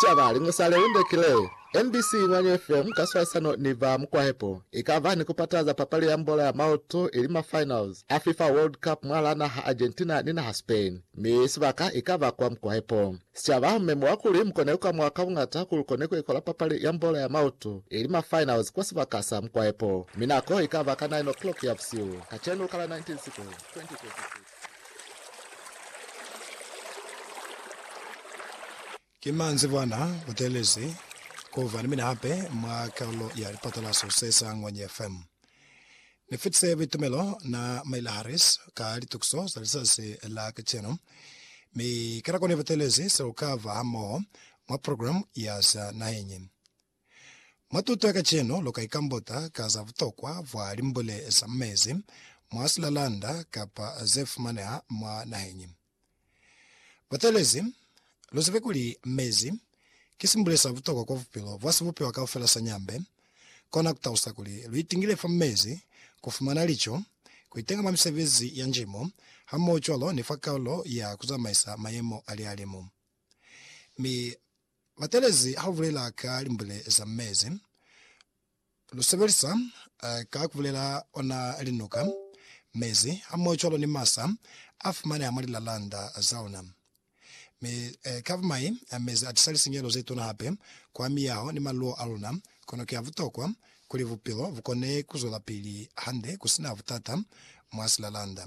Sicaba, Liñwi sa Lelinde ki le, NBC Nywanyo FM ka swalisano ni ba Mukwahepo i ka ba ni ku pataza papali ya mbola ya maoto ili ma finals a FIFA World Cup mwalaa naha Argentina ni naha Spain, mi sibaka i ka ba kwa Mukwahepo. Sicaba, Mme mwa kuli mu kone ku amuha ka buñata kuli kone ku ikola papali ya mbola ya maoto ili ma finals kwa sibaka sa Mukwahepo, mi nako i ka ba ka 9 o'clock ya busihu kacenu ka la 19 Siku 2026. Ki manzibwana kutelezi kuba ni mina hape mwa kalulo ya lipatalaso se sa Ngwenye FM. Ni fitise buitumelo na Maila Harris ka litukiso za lizazi la kacenu, mi kanako ni butelezi se ku kaba hamoho mwa programu ya za naheñi. Mwa tuto ya kacenu, lu ka ikambota ka za butokwa bwa limbule za mu mezi, mwa silalanda, kapa ze fumaneha mwa naheñi. Bateelezi, lu zibe kuli mezi ki simbule sa butokwa kwa bupilo bwa sibupiwa kaufela sa nyambe. Kona ku talusa kuli lu itingile fa mezi, ku fumana lico, ku itenga mwa misebezi ya njimo, hamohocwalo ni fa kaulo ya ku zamaisa mayemo a lihalimu. Mi, Batelezi ha lu bulela ka limbule za mezi, lu sebelisa ka ku bulela ona linuka, mezi, hamohocwalo ni masa a fumaneha mwa lilalanda za ona. Mi ka bumai, mezi a tisa lisinyehelo ze tuna hape kwa miyaho ni maluwo a luna, kono ki a butokwa kuli bupilo bu kone ku zwelapili hande ku si na butata mwa silalanda.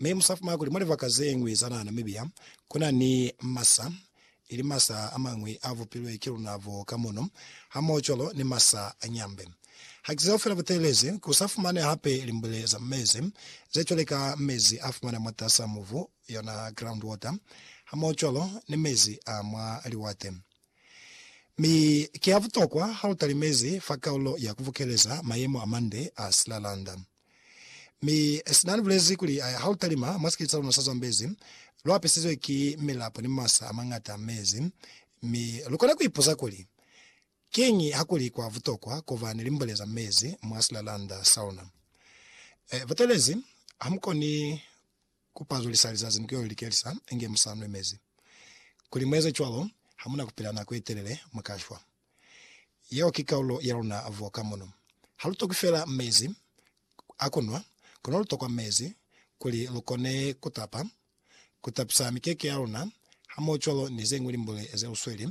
Mi musa fumana kuli mwa libaka zeñwi za naha Namibia, kuna ni masa, ili masa amañwi a vupilwe ki luna bo ka mono, hamohocwalo ni masa a nyambe. Haki zeo fela butelezi, ku sa fumaneha hape limbwile za mezi, ze cwale ka mezi a fumanea mwatasa mubu, yona ground water, hamohocwalo ni mezi a mwa liwate. Mi ki a butokwa ha lu tali mezi fa kaulo ya ku bukeleza mayemo a mande a silalanda. Mi Sinani bulezi kuli, Ha lu talima mwa sikete sa luna sa Zambezi, lu apisizwe ki milapo ni masa a mañata a mezi. Mi lu kona ku ipuza kuli, Kiñi ha ku li kwa butokwa ku ba ni limbole za mezi mwa silalanda sa luna? E, butelezi, ha mu koni ku pazulisa lizazi ni ku yo likelisa inge mu sa nwi mezi. Kuli mu eze cwalo, ha mu na ku pila nako ye telele, mu ka shwa. Yeo ki kaulo ya luna vo ka mono. Ha lu tokwi fela mezi a ku nwa, kono lu tokwa mezi kuli lu kone ku tapa, ku tapisa mikeke ya luna, hamohocwalo ni ze ñwi limbule ze lu sweli.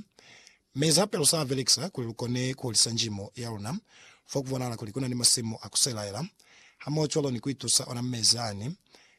Mezi hape lu sa a belekisa kuli lu kone ku hulisa njimo ya luna fo ku bonahala kuli ku na ni masimu a ku selaela, hamohocwalo ni ku itusa ona mezi ani